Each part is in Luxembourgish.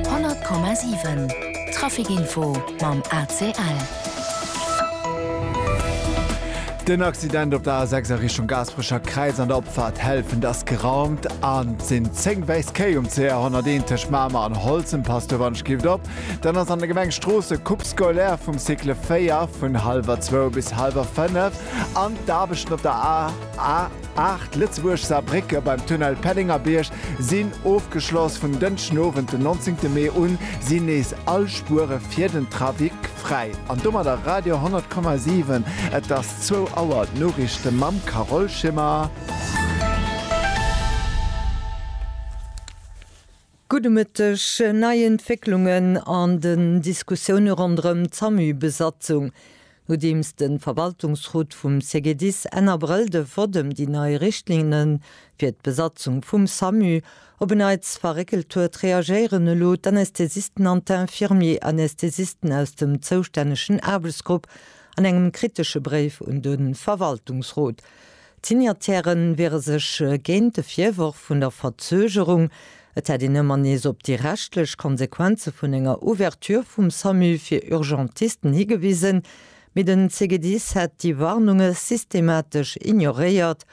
100,7 Trafic Info mam ACL. Den Accident op der A 6 a Richtung Gaasperecher Kräiz an der Opfaart Helfent ass geraumt an et sinn 10 wäiss Kéi um CR 101 tëscht Mamer an Holzem. Passt op an skift op. Dann ass an der Gemeng Stroossen Coupe scolaire vum Cycle 4 vun hallwer zwou bis hallwer fënnef an d'Aarbechten op der A A 8 Lëtzebuerg-Saarbrécke beim Tunnel Pellengerbierg sinn ofgeschloss. Vun Dënschdenowend den 19 Mee un sinn nees all Spuere fir den Trafic fräi. An domadder Radio 10,7. Et ass zwou Auer. D'Noriichte mam Carole Schimmer. Gudde Mëtteg. Nei Entwécklungen an den Diskussioune ronderëm d'SAMU-Besatzung. Nodeems de Verwaltungsrot vum CGDIS Enn Abrëll de Vott ëm déi nei Richtlinne fir d'Besatzung vum SAMU op en Neits verréckelt huet, reagéieren elo d'Anästhesisten an d'Infirmier-Anästhesisten aus dem zoustännegen Aarbechtsgrupp an engem kritesche Bréif un de Verwaltungsrot. D'Signataire wiere sech géint de Virworf vun der Verzögerung, et hätt een ëmmer nees op déi rechtlech Konsequenze vun enger Ouverture vum Samu fir Urgentisten higewisen, mee den CGDIS hätt déi Warnunge systematesch ignoréiert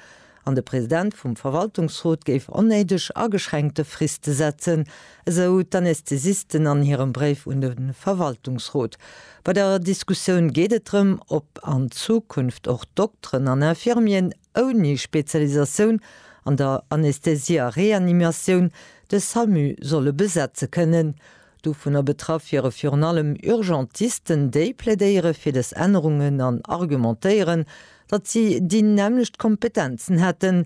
an de President vum Verwaltungsrot géif onnéideg ageschränkte Friste setzen, esou d'Anästhesisten an hirem Bréif un de Verwaltungsrot. Bei der Diskussioun geet et drëm, ob an Zukunft och Dokteren an Infirmieren ouni Spezialisatioun an der Anästhesie a Reanimatioun de Samu solle besetze kënnen. Dovunner betraff wiere virun allem Urgentisten. Déi plädéiere fir des Ännerungen an argumentéieren, datt si déi nämmlecht Kompetenzen hätten,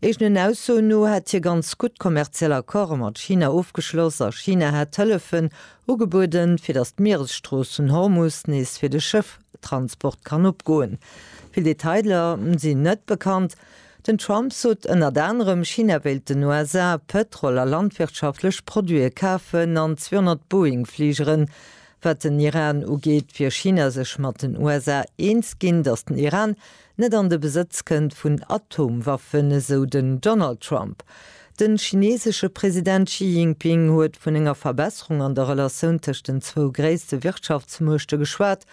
Eegenen Aussoen no hätt hie ganz gutt kommerziell Accorde mat China ofgeschloss a China hätt Hëllefen ugebueden, fir datt d'Mieresstrooss vun Hormus nees fir de Schëfftransport kann opgoen. Vill Detailer sinn net bekannt. Den Trump sot ënnert anerem, China wéilt den USA Pëtrol a landwirtschaftlech Produite kafen an 200 Boeing-Fligeren. Wat den Iran ugeet, wier China sech mat den USA eens ginn, datt den Iran net an de Besëtz kënnt vun Atomwaffen, esou den Donald Trump. De chineesesche President Xi Jinping huet vun enger Verbesserung an der Relatioun tëscht den zwou gréisste Wirtschaftsmuechte geschwat.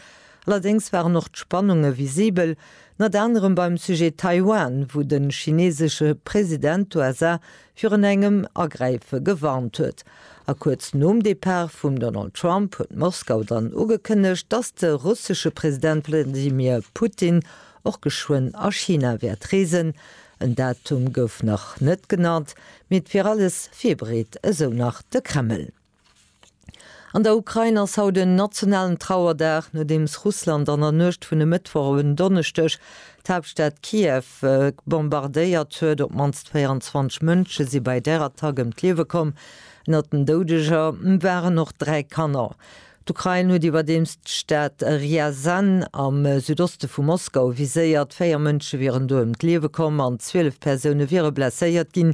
Allerdéngs waren och d'Spannunge visibel, ënnert anerem beim Sujet Taiwan, wou de chineesesche President d'USA virun engem Agräife gewarnt huet. A kuerz nom Depart vum Donald Trump huet Moskau dann ugekënnegt, datt de russesche President Wladimir Putin och geschwënn a China wäert reesen. En Datum gouf nach net genannt, mee et wier alles virbereet, esou nach de Kreml. An der Ukrain ass haut en nationalen Trauerdag, nodeems Russland an der Nuecht vun e Mëttwoch op en Donneschdeg d'Haaptstad Kiew bombardéiert huet. Op d'mannst 24 Mënsche si bei där Attack ëm d'Liewe komm. Ënnert den Doudeger waren och dräi Kanner. D'Ukrain huet iwwerdeems d'Stad Rjazan am Südoste vu Moskau viséiert. Véier Mënsche wieren do ëm d'Liewe komm an 12 Persoune wiere blesséiert ginn.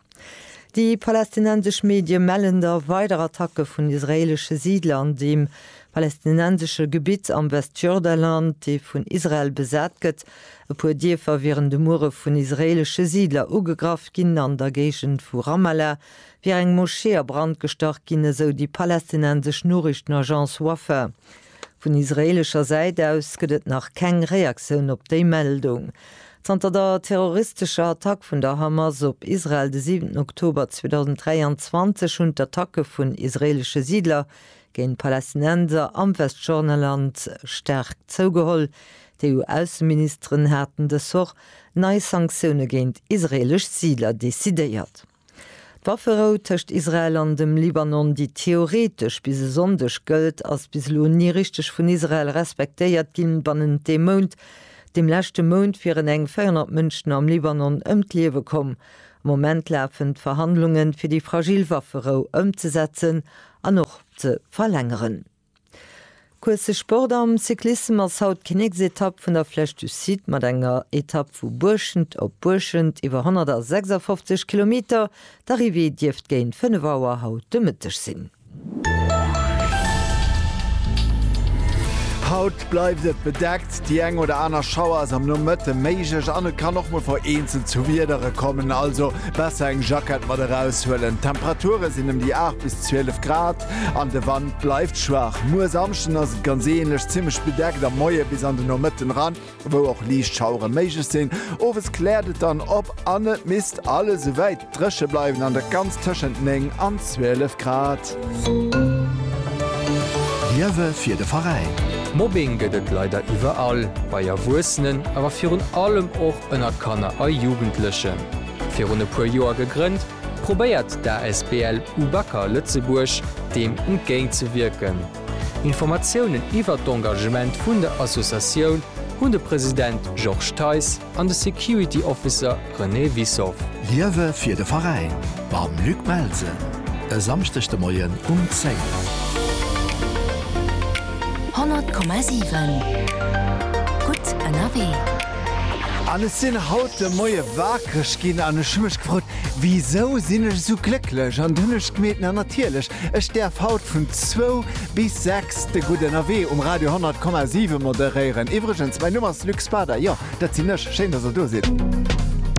Déi palästinensesch Medie mellen da weider Attacke vun israeelesche Siidler an deem palästinensesche Gebitt am Westjordaland, dee vun Israel besat gëtt. E puer Dierfer wieren de Muere vun israeelesche Siidler ugegraff ginn. An der Géigend vu Ramallah wier eng Moschee a Brand gestach ginn, esou déi palästinensesch Noriichtenagence Wafa. Vun israeelescher Säit aus gëtt et nach keng Reaktioun op déi Meldung. Zanter der terroristescher Attack vun der Hamas op Israel de siwenten Oktober 2023 hunn d'Attacke vun israeelesche Siidler géint Palästinenser am Westjordanland staark zougeholl. D'EU-Ausseministeren haten dës Woch nei Sanktioune géint israeelesch Siidler decidéiert. D'Wafferou tëscht Israel an dem Libanon, déi theoretesch bis e Sonndeg gëllt, ass bis elo ni richteg vun Israel respektéiert ginn. Bannent deem Mount, dem leschte Mount, wieren eng 400 Mënschen am Libanon ëm d'Liewe komm. Am Moment lafen d'Verhandlungen, fir déi fragil Wafferou ëmzesetzen an och ze verlängeren. Course Sport am Cyclissem ass haut d'Kinnéksetapp vun der Flèche du Cid mat enger Etapp vu Buerschent op Buerschent iwwer 156 Kilometer. D'Arrivée dierft géint 5 Auer haut de Mëtteg sinn. Haut Bleift et bedeckt, déi eng oder aner Schauer ass am Nomëtte méiglech an et kann och mol vereenzelt zu Wiedere kommen, also besser eng Jackett mat eraus huelen. D'Temperature sinn ëm déi 8 bis 12 Grad an de Wand bleift schwaach. Muer Samschden ass et ganz änlech, zimmlech bedeckt am Moie bis an de Nomëtten eran, wou och liicht Schauere méiglech sinn. Owes kläert et dann op an et misst alles esouwäit Dréche bleiwen an der ganz tëschent 9 an 12 Grad. Liewe fir de Veräin! Mobbing gëtt et leider iwwerall, bei Erwuessenen, awer virun allem och ënner Kanner a Jugendlechen. Virun e puer Joer gegrënnt, probéiert d'ASBL UBAKA Lëtzebuerg deem entgéint ze wierken. Informatiounen iwwert d'Engagement vun der Associatioun hunn de President Georges Theis an de Security Officer René Wissow. Liewe fir de Veräin mam Luc Melsen e Samschdeg de Moien um 10. 100,7 Gutt ënnerwee. An ech sinn haut de Moie wakereg ginn an ech hu mech gefrot, Wisou sinn ech esou glécklech? An dunn hu ech gemeet, na natierlech, Ech däerf haut vun zwou bis sechs de Gudde Ënnerwee um Radio 100,7 moderéieren. Iwwregens, mäi Numm ass Luc Spader, jo, dat sinn ech. Schéin, dass der do sidd.